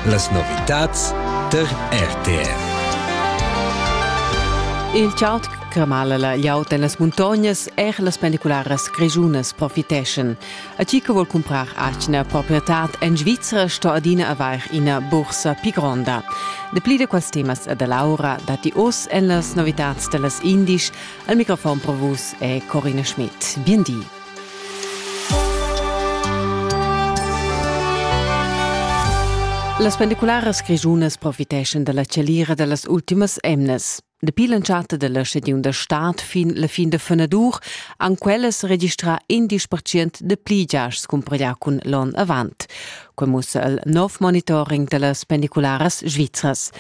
Las novitads tar RTR. Il chartg cramala la gliaut en las muntognas, er las pendicularas grischunas profiteschan. A chi che vuol comprar atgna proprietad en Svizzera sto adina avair ina bursa più gronda. De pli de quels temas e da Laura dati oz en las novitads de las Indisch. Al microfon pro vus è Corina Schmidt. Bien di. Las pendicularas grischunas profiteschan dalla chalira dallas ultimas emnas. Dapi l'entschatta della stadiun da stad fin la fin da fenadur han quellas registrà indisch percent de pli giasts cumparià cun l'onn avant. Quei mussa il nov monitoring dallas pendicularas svizras.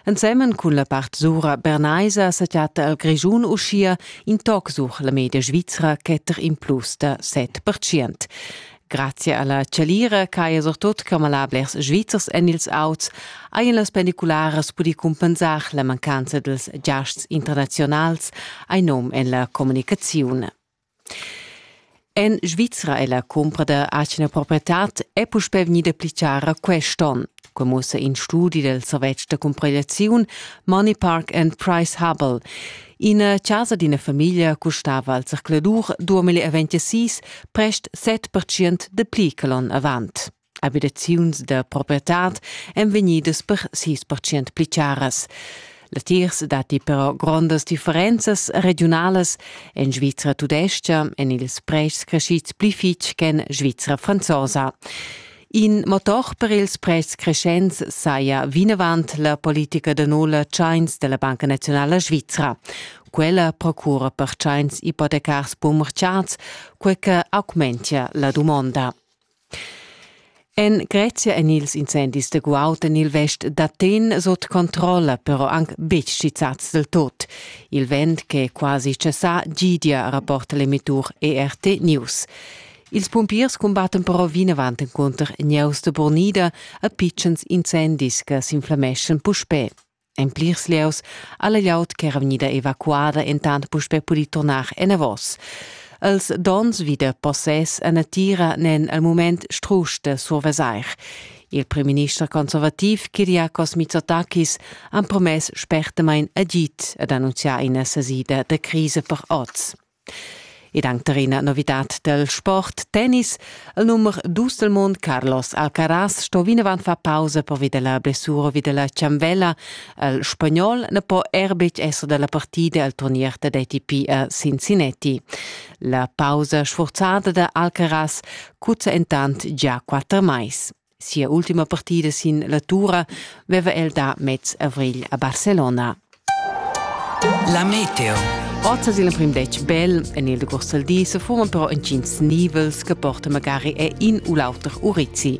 Ensemen cun la part sura bernaisa sa chatta el Grischun uschia in toc sur la media svizra chetter in plus da 7%. Grazie alla Celira ch'haja surtut camalablers svizzers en ils auts hajan las pendicularas pudì cumpensar la mancanza dels giasts internaziunals, ein num en la communicaziun. En Svizra è la cumpra da atgna proprietad è puspè vegnida pli chara quest onn. Quai mussa in studi dal servetsch da cumparegliaziun Money Park and Price Hubble. Ina chasa d'ina famiglia custava al circuladur 2026 prest 7% de pli che l'onn avant. Abitaziuns da proprietad èn vegnidas per sis percent pli charas. Latiers datti però grondas differenzas regiunalas. En Svizra tudestga èn ils pretschs creschids pli fitg ch'en Svizra franzosa. In motor per ils pretschs creschents saja vinavant la politica da nulla tschains della Banca Nazionala Svizra. Quella procura per tschains ipotecars bumerciats, quei che augmentia la dumonda. En Grezia èn ils incendis da guaud en il vest d'Aten sut controlla, però anc betg schizzads del tot. Il vent che è quasi cessà gidia, rapporta l'emettur ERT News. Ils pumpiers cumbattan però vinavant encunter gnieus da burnida e pitschens incendis che s'inflammeschan puspè. En plirs lieus ha la glieud ch'era vegnida evacuada entant puspè pudì turnar enavos. Els donns vi da possess a natira n'èn al mument strusch da survesair. Il primminister conservativ Kyriakos Mitsotakis ha promess spertamain agid ad annunziar ina sasida da crisa per oz. Ed anc terrena novidad del sport tennis. Il numer dus del mund Carlos Alcaraz sto vinavant far pausa pervi della blessura vi della cianvella. Il spagnol ne po er betg esser della partida al turnier dad ATP a Cincinnati. La pausa sforzada da Alcaraz cuzza entant già quatter mais. Sia ultima partida sin la tura veva el da mez avrigl a Barcelona. La meteo. Oz sin l'emprim detg bel en il decorso al di se furono però entgins nivels che porta magari a in u l'auter Urizzi.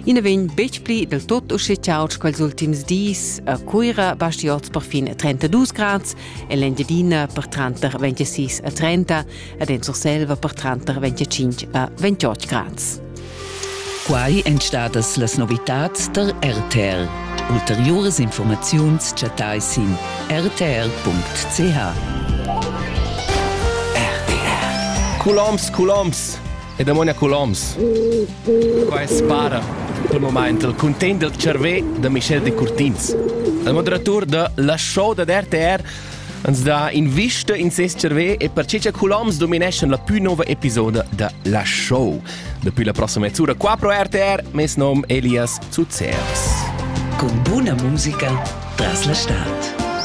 I ne vegn betg pli del tutto uscì ciauts quels ultims dis. A Cuira basti oz perfin 32 grads e l'Engiadina per 30 26 a 30. ed en Surselva per tranter 25 e 28 grads. Quai èn stadas las novitads tar RTR. Ulteriuras informaziuns chattai sin rtr.ch. Colombs, Colombs e Demonia Colombs. Qua è spara per moment il content del cervé da Michel de Curtins. Il moderatur de La Show da RTR Ans dà invista in ses cervè e perche cha Colomns domineschan la pü nouva episoda da La Show. Dapi la prossima mezz'ura qua pro RTR, mes nom Elias Zuzeres. Con buna musica tras la stad.